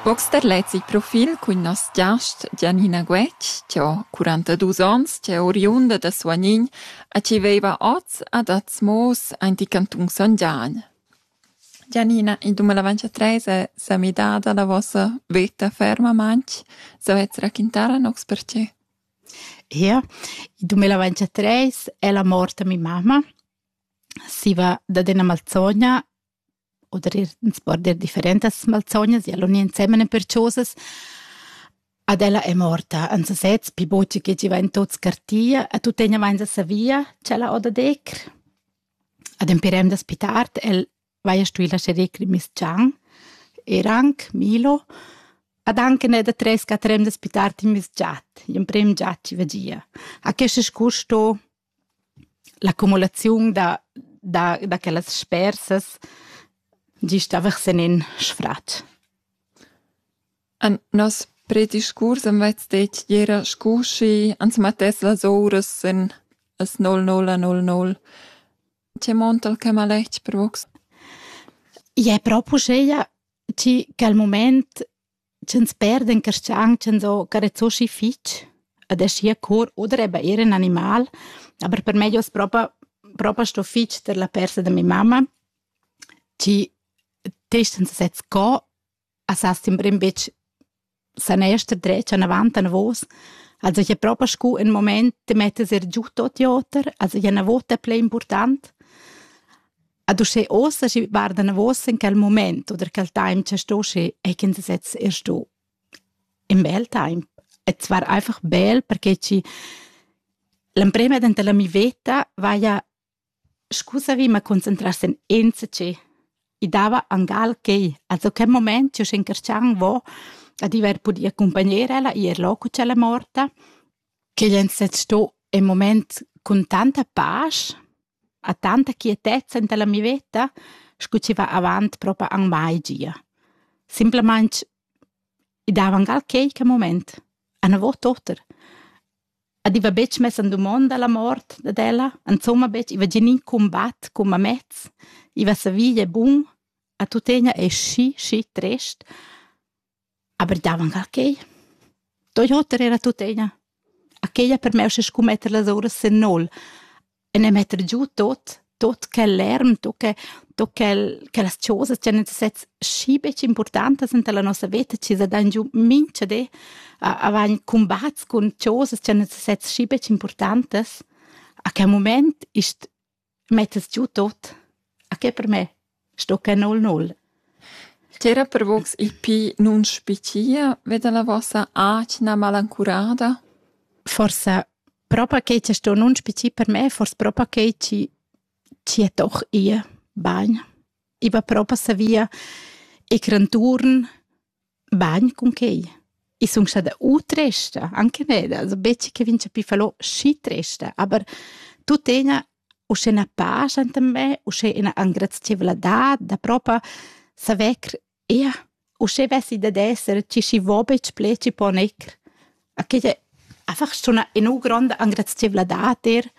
Box da lez il profil cun nos giast Gianina Guetg, chi ho quarantaduos ons, chi è oriunda da Suagnin e chi veiva hoz ad Azmoos aint il cantun San Gian. Gianina, in dumilavantatres es sa midada la vossa veta fermamaing. Savez raquintar a nox perche? Ia, il dumilavantatres è la mort da mi mamma. Si va dad üna malzogna o der ir ins po dir differentas malzognas e all'uni ensemen per chosas ad ella è morta en sesez pi buca che giva in tot scartia a tuttegna vainsa savia ch'ella oda decer ad empirem da spitart el vaia stui lascher decr miss Chang er anc Milo ad anche ne da tres catrem da spitart in miss giat in prem giat ci vagia a questo scur sto L'accumulaziun da da da quellas spersas gist aversa en in sfratg. En nos prediscurs am vets detg era scu schi ans mettess las ouras en as 0000. Che montal che maletg per vos? Ie, propo scheia, chi che al mument ch'ins perdan carschang ch'ins ho carezoschi fich ad aschi a cor oder eben eir ün animal. Aber per me jos propa propa sto fich tar la persa da mia mamma, chi testens sez co a sa sembra in bitg san ester dretg anavant anavos. Also ich habe propa scu in moment de mettes er giù tot joter, also ich habe una vota play important. Ad uschè ossa schi varda navos in quel moment oder quel time che sto schi e kin se sez er sto. In bel time. Et war einfach bel perché ci l'emprema dent la mi veta vaia scusavi ma concentrarsi in enzace i dava angal che also quel moment io sc'incarcian vo a diver pudi accompagner ella ir loco c'ella morta che jen se sto in moment con tanta pace ha tanta quietezza enta la mi veta, scu chi va avant propa ün mai gia. Simplamaing i dava angal quaique mumaint, a na vo toter. Ed i va betg mess in dumonda la mort dad ella, insomma betg, i va gnir ün cumbat cum amez, i va savia bun, a tuttegna es schi, schi trist. Aber davanc a quei. Doi oter era tuttina. A quei ha permess sco metter las uras sin nol e ne metter giu tot, tot quel lärm, tot che, tot quel, quellas chosas che han sets schi betg importantas enta la nossa veta chi sa dan giu mincha di a, a vain cumbats cun chosas che han sets schi betg importantas. A quel moment ist Mettas giu tot? A che per me? Sto che null null. Ch'era per vos il pli nunspicia ve dalla vossa atgna malancurada? Forse propa che ci sto nun spici per me, forse propa che ci ci è doch ihr bagn. I va propa savia e cranturn Bagn cun quei. I sun stada u tresta, anche neda, also betg che vegn chapì fallò schi tresta, aber tuttegna uschè 'na pascha enta me, uschè ina engrazieivladad da propa saver eir uschè vessi dad esser chi schi vo betg plet, chi po neir. A quei è einfach suna ün'u gronda engrazieivladad eir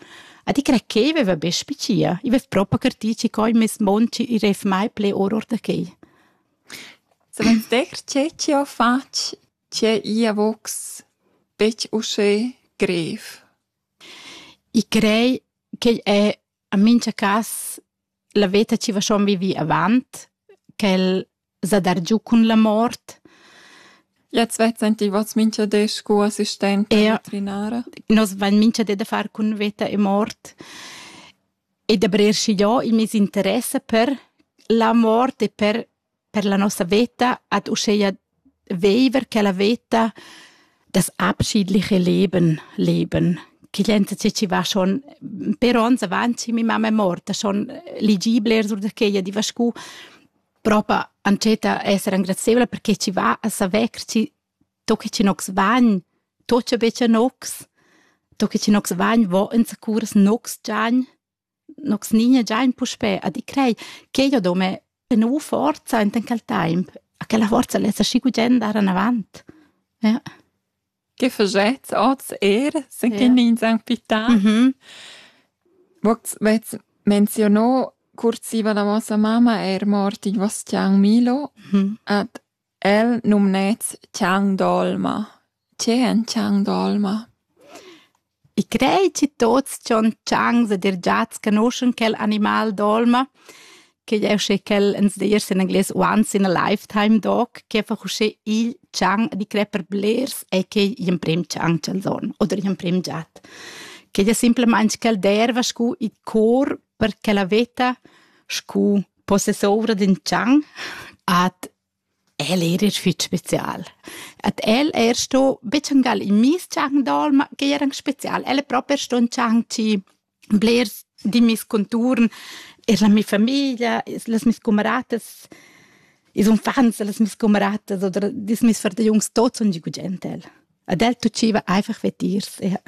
a di crer ch'ei veva be spicia. I vess propa cartì chi coi meis mond chi i reiv mai ple or or da quei. Suenter che chi ho fatg tgè ia vogs betg uschè grev. I crei ch'igl è en mincha cas la veta chi va schon vivi avant, ch'el s'ha dargiù cun la mort. Jetzt vets sentivats mincha di scu assistenta veterinara? Nos vain mincha di da far cun veta e mort. e da brer schigliò il meis interess per la mort e per per la nossa veta ad uscheia veiver quella veta das abschiedliche Leben leben che glienza che chi va schon per ons avanti mi mamma è morta schon ligibler sur da quella di va scu propa antschetta esser engrazieubla perché chi va a saver chi Do che chi nogs vagn, do cha betga nogs, do che chi nogs vagn, vo enzacurs nogs giagn, nogs nigna giagn puspè a di crei ch'eu do me ena forza enten quel taimp, a quella forza lessa schi gugent andar anavant. Ja. Che fagetts oz er, se che ja. nins han pità? Mm -hmm. Vox vets menzionò cursiva la vostra mamma er morti Vostian Milo, mm -hmm. ad El numnets Chang d'olma. Tge èn Chang d'olma? I crei chi tuots dschon changs ed eir giats canoschan quel animal d'olma, ch'igl è usché quel ins disch in anglais once in a lifetime dog, che fa usché igl chang ed i crei per blers e ch'ei gl'emprim chang ch'els hon oder gl'emprim giat. Ch'igl è simplamaing quel d'erva scu i cor per quella veta scu possessora d'in tschang at el er er fitg spezial. At el er sto betschangal in mis tschang dal, ma che era spezial. El è proprio sto un tschang ci blers di mis conturn, er la mia famiglia, les mis camaratas, is unfants, les mis camaratas oder dis mis far de jungs tots und die guten Tel. Ad el tuciva einfach vetirs, ja.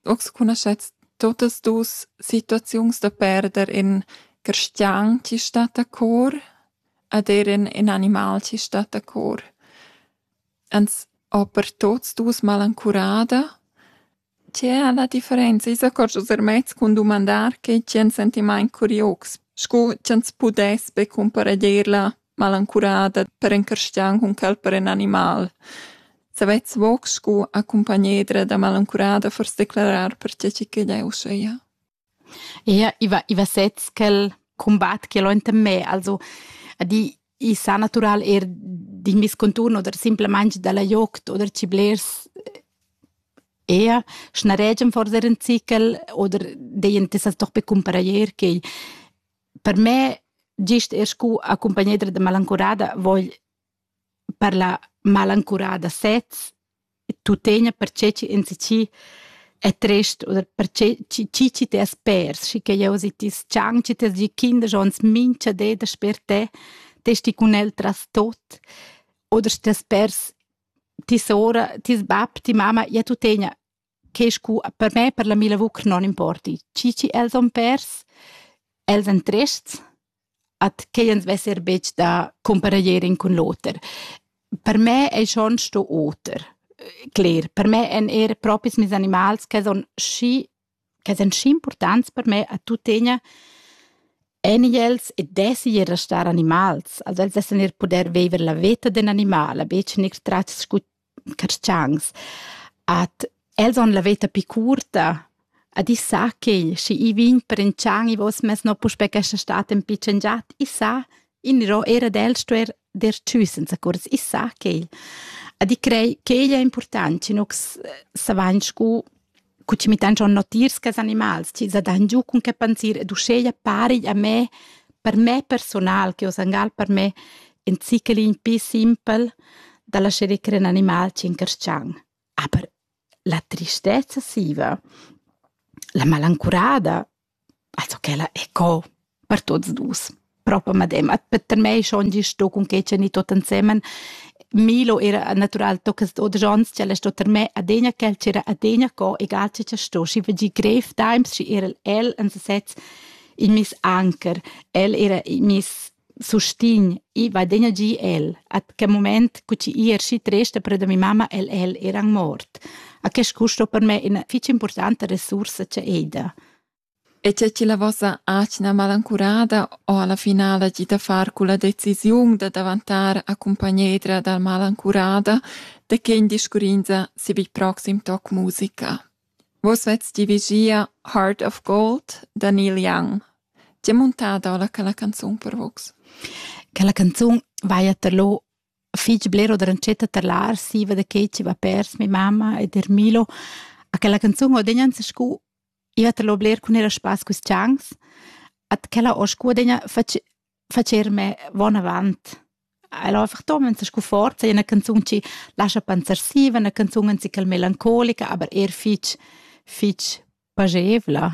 Ox cunoschets tuottas duos situaziuns da perder ün cristian chi stat a cor ed eir ün ün animal chi stat a cor. Ans ho per tuots duos malancurada. Tge a la differenza? I s'accordscha er mez cun dumandar che tgi ans sentimaint curiox, scu ch'ans pudess be cumpareglier la malancurada per encarschian cun quel per in animal. Savets voc scu accompagnedra da malancurada fors declarar per tge che eu seia. Ia iva, iva sez quel combat che l'ho enten me, also di i sa natural er d'in vis conturn oder simplemente dalla joct oder ci blers ea schnaregem fors er in cicel oder deien tessas doch be cumparair che Per me, gist er scu accumpagnedra da malancurada vogl parlar malancurada sez e tuttegna perche chi enzatgi è trist oder perche chi chi chi t'es pers, schi che jeu si ti s-chang, chi t'es gi kinder schon mincha di dasper te, t'es ti cun el tras tot oder stess pers ti sora, tis bab, ti mama, ja tuttegna che scu per me per la mia lavur che non importi. Chi chi els han pers, els han trests, at che ans vesser betg da compareggeren cun l'oter. Per me ei schon sto oter. Cler, per me èn er propis mes animals che son schi che son schi importants per me a tuttegna en els e dessi er restar animals. Also els dessan er puder vever la veta d'un animal, a betg ner tratgs scu carstgauns. Ad els on la veta pi curta, ad i sa ch'ei, schi i vegn prentschan i vos mess no puspè questa stat en pitschen giat, i sa, in ro era del stuer der tschü senza curs, i sa ch'ei. Ad i crei ch'ei è important, schi nux savain scu cu ci mi tengion notiers che animals, ci sa dan giu cun che pensir ed uscheia pari a me, per me personal, che o sangal per me, in zichelin pi simpel da lascere crer in animal ci incarscian. Aber la tristezza siva, la malancurada, Also quella è co per tuots dus. Propa medemma. Per mei schon gist sto cun quei tschernir tot ensemen. Milo era natural tocca sto da Jons, ch'ella sto ter me adegna quel ch'era adegna co, egal che cha sto, schi vegi grev times, schi era el en sesez il mis anker. El era il mis sustign, i va degna gi el, at che moment cu chi i erschi tresta per da mi mamma el el eran mort. A che scusto per me ina fich importanta resursa che eida. E c'è chi la vossa atgna malancurada o alla finale di da far cu la decisiun da davantar a cumpagnedra dal malancurada, de che in discurrinza si vi proxim toc musica? Vus vets dirigia Heart of Gold da Neil Young. Ti è muntada ora quella canzun per vus? Quella canzun vaia tar lo fich bler oder entschetta tar l'arsiva da che ci va pers mi mamma ed er Milo. A quella canzun ho degna scu iva tar lo bler cun era spass cus chans. At quella ho scu degna fach facer me vonavant. El ho einfach tom esa scu forza, üna canzun chi lascha pensar siva, üna canzun ansicchel melancolica, aber eir fich fich pajevla.